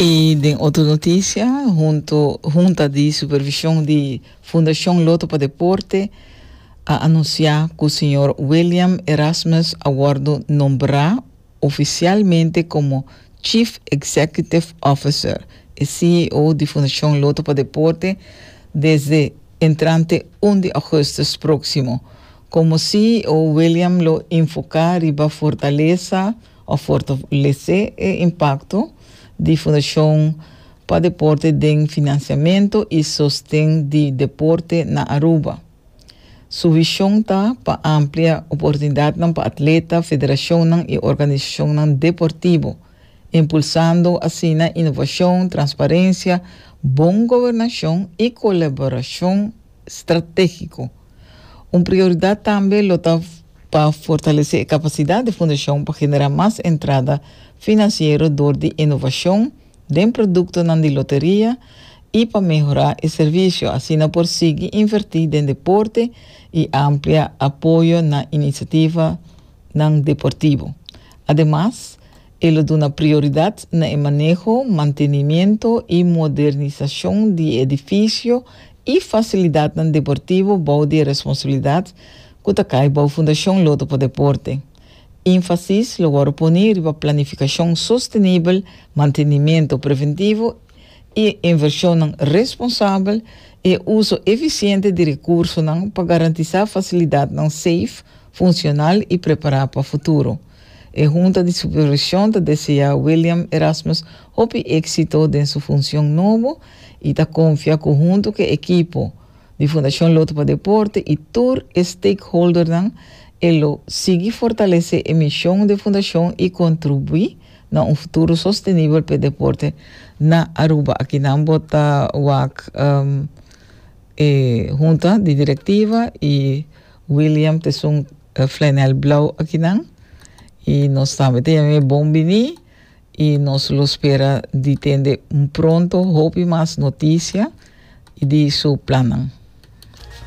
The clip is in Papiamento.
I den otro noticia, hunto Hunta di Supervision di Fundacion Lotto pa Deporte a anuncia cu señor William Erasmus a wordo nombra oficialmente como Chief Executive Officer y CEO di Fundacion Lotto pa Deporte desde entrante un di augustus proximo. Como CEO William lo enfoca riba fortaleza, a fortalesé e impakto di Fundashon pa Deporte den finansiamentu i sosten di deporte na Aruba. Su vishon ta pa amplia oportunidatnan pa atleta, federashonnan i organisashonnan deportibu, impulsando asina inovashon, transparensia, bon gobernashon i kolaborashon stratégiko. Un prioridat tambe lo ta. Pa fortalesé e kapasidat di fundashon pa generá mas entrada finansiero dor di inovashon den produktonan di loteria i pa mehorá e servisio, asina por sigui invertí den deporte i amplia apoyo na inisativanan deportivo. Ademas, e lo duna prioridat na e maneho, mantenimiento i modernisashon di e edifisio i fasilidatnan deportivo bou di e responsabilidat ku ta kai bou Fundashon Loto pa Deporte. Énfasis lo wòrdu poni riba planifikashon sostenibel, mantenimentu preventivo i invershonnan responsabel, i uso efisiente di rekursonan pa garantisá fasilidatnan seif, funshonal i prepará pa futuro. E Hunta di Supervishon ta deseá William Erasmus hopi éksito den su funshon nobo i ta konfia ku huntu ku e ekipo, Di Fundashon Loto pa Deporte i tur e stakeholdernan e lo sigui fortalesé e mishon di e fundashon i kontribuí na un futuro sostenibel pa e deporte na Aruba. Aki nan bo ta wak e hunta di direktiva i William t'esun Flainel Blauw aki nan i nos tambe ta yama e bon biní. y nos lo spera di tende pronto hopi mas noticia y di su plannan.